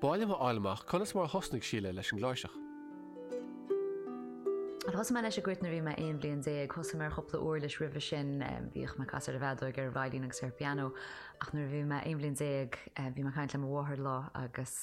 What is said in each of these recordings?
B'áil liom a fháil amach conas mar a thosnaigh Síle leis an gcláirseach. Thosaigh mé leis ag an gcruit nuair a bhí mé aon bhliain déag. Thosaigh mé ar chúpla uirlis roimhe sin, bhínn ag casadh ar an bhfeadóig, ar an veidhlín agus ar an bpianó, ach nuair a bhí mé aon bhliain déag bhí mé ag caint le mo mháthair lá agus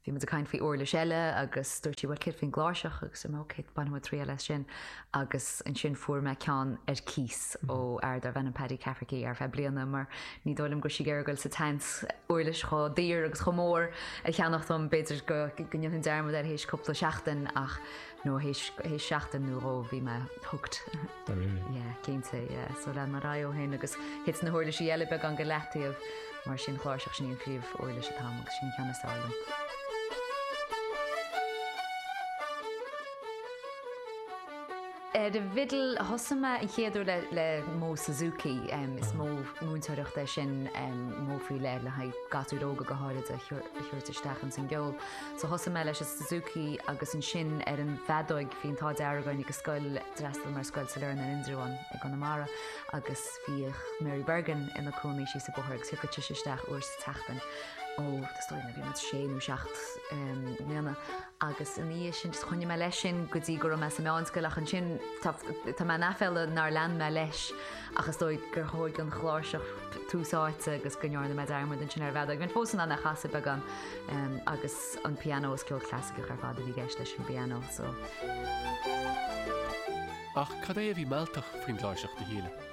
bhí muid ag caint faoi uirlis eile agus dúirt sí bhuel céard faoin gcláirseach agus dúirt mé ok bainfidh muid triail as sin agus ansin fuair mé ceann ar cíos ó fhear darbh ainm Paddy Cafferky ar feadh bliana mar ní dóigh liom go raibh sí ag iarraidh dul sa tseans uirlis chomh daor agus chomh mór a cheannach dom, b'fhéidir go ndéanfainn dearmad air théis cúpla seachtain ach no théis seachtain nó dhó bhí mé hooked. Dá réir. Ie, cinnte, ie. So lean mé ar aghaidh ó shin agus thit na huirlisí eile beagán go leataobh mar is í an chláirseach, sin í an phríomh uirlis atá agam agus sin an ceann is fearr liom. Ar an bhfidil a thosaigh mé an chéad uair le modh Suzuki. Is modh múinteoireachta é sin, modh faoi leith le haghaidh gasúir óga go háirid a thabhairt isteach ins an gceol. So thosaigh mé leis an Suzuki agus ansin ar an bhfeadóig. Bhí an t-ádh dearg againn ag an scoil, d'fhreastail mé ar Scoil Sailearna in Indreabhán i gConamara agus bhíodh Mary Bergin ina cónaí síos an bóthar agus thiocfadh sise isteach uair sa tseachtain. Ó, is dóigh nuair a bhí mé sé nó seacht mbliana. Agus ina dhiaidh sin just choinnigh mé leis sin go dtí go raibh mé sa meánscoil ach ansin tá tá mé in aiféala nár lean mé leis ach is dóigh gur thóig an chláirseach tús áite agus go ndearna mé dearmad ansin ar an bhfeadóg. Bheinn fós in ann é a chasadh beagán agus an pianó is ceol clasaiceach ar fad a bhí i gceist leis an bpianó so. Ach cad é a bhí mealltach faoin gcláirseach do Shíle?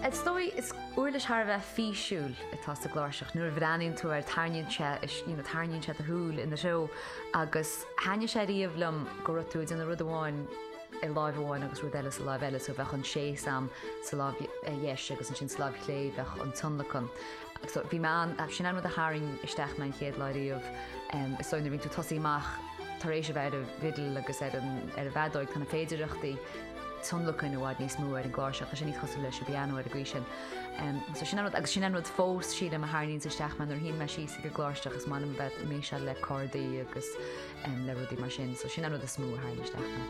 Is dóigh is uirlis thar a bheith físiúil atá sa gcláirseach. Nuair a bhreathnaíonn tú air tarraingíonn sé is you know tarraingíonn sé do shúil ina threo agus thaitnigh sé riamh liom go raibh tú ag déanamh rud amháin i láimh amháin agus rud eile sa láimh eile so bheadh an tséis agam sa láimh dheis agus ansin sa láimh chlé bheadh an tionlacan. so bhí mé ann, sin an rud a tharraing isteach mé an chéad lá riamh, em, so nuair a bhíonn tú ag tosaí amach tar éis a bheith ar an bhfidil agus ar an, ar an bhfeadóig, tá na féidireachtaí tionlacain i bhfad níos mó ar an gcláirseach, tá sé níos cosúil leis an bpianó ar an gcaoi sin. Em, so sin an rud, agus sin an rud fós sílim a tharraingíonn isteach mé nuair a shuím síos ag an gcláirseach agus mé in ann a bheith ag messáil le cordaí agus, em, le rudaí mar sin, so sin an rud is mó a tharraing isteach mé.